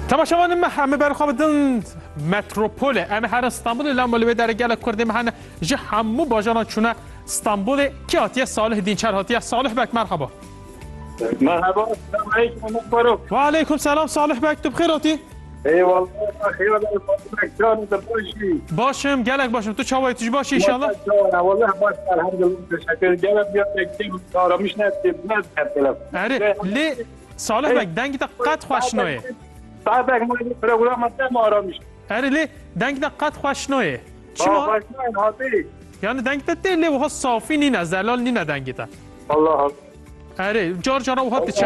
Temaşevan me hemê ber xwe bidin metropole em her Stanbulê lama li wê derê gelek Kurdê me hene ji hemû bajaran çûne Stanbulê kî hatiye Salih Dînçer hatiye Salih bek merhaba. Merhaba, selam aleyküm. Ve aleyküm selam Salih bek tu bixêr hatî. Baş im gelek baş im tu çawa tu ji baş inşallah lê Salih bek dengî te qet xweş noyê Erê lê dengî te qet xweş noyê Çima Yani dengî te tê lê wiha safî nîne zelal nîne dengî te Erê car cara wiha diçe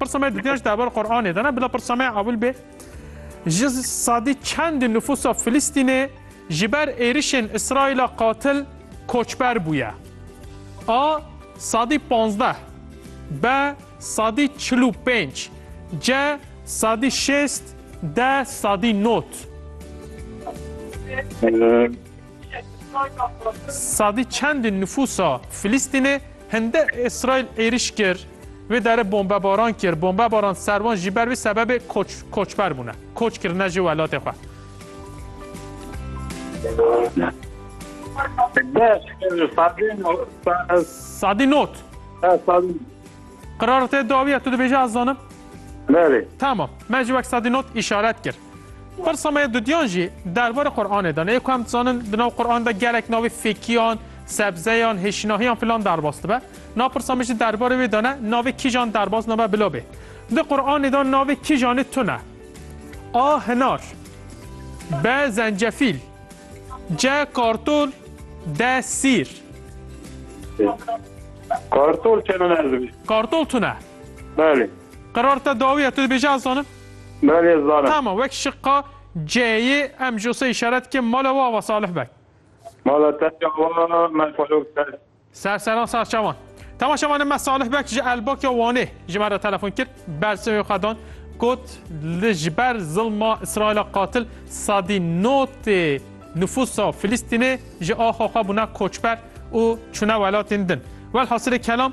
Pirsa me dûtiyan ji dever Qur'anê de ne bila pirsa me ewil bê. Ji sadî çend nüfusa Filistînê ji ber êrişên İsraîla qatil koçber bûye. A sadî pazdeh, B sadî çil û pênc, C sadî şêst, D sadî not. Sadî çendê nifûsa Filîstînê hinde Îsraîl êrîş kir, wê dere bombebaran kir, bombebaran ser wan jî ber vê sebebê koç koçber bûne, koç kirine ji welatê xwe. Sadî not. Qirar te dawiye tu dibêje ez zanim. Berê. Tamam. Me ji wek sadî not îşaret kir. Pirsa me ya dudiyan jî derbarê Quranê de ne yê ku em dizanin di nav Quran de gelek navê fêkiyan, sebzeyan, hêşinahiyan filan derbas dibe. Na pirsa me jî derbarê wê de ne navê kîjan derbas nabe bila bê. Di Quranê de navê kîjanê tune. A hinar. B zencefîl. C kartol. D sîr. Kartol çene ne ez dibîst. Kartol tune. Belê. Qirar te dawiye tu dibêje ez zanim. Me lê zana. Tama wek şiqa C'yê em jo se îşaret dikim mala we ava Salih beg. Mala te ya wa me xwelok ser. Ser seran ser çavan. Tama şevan em me Salih beg ji Elbak ya Wanê ji me re telefon kir bersiv wê xwe dan got li ji ber zilma Îsraîla qatil sedî notê nifûsa Filîstînê ji axa xwe bûne koçber û çûne welatên din. Welhasilê kelam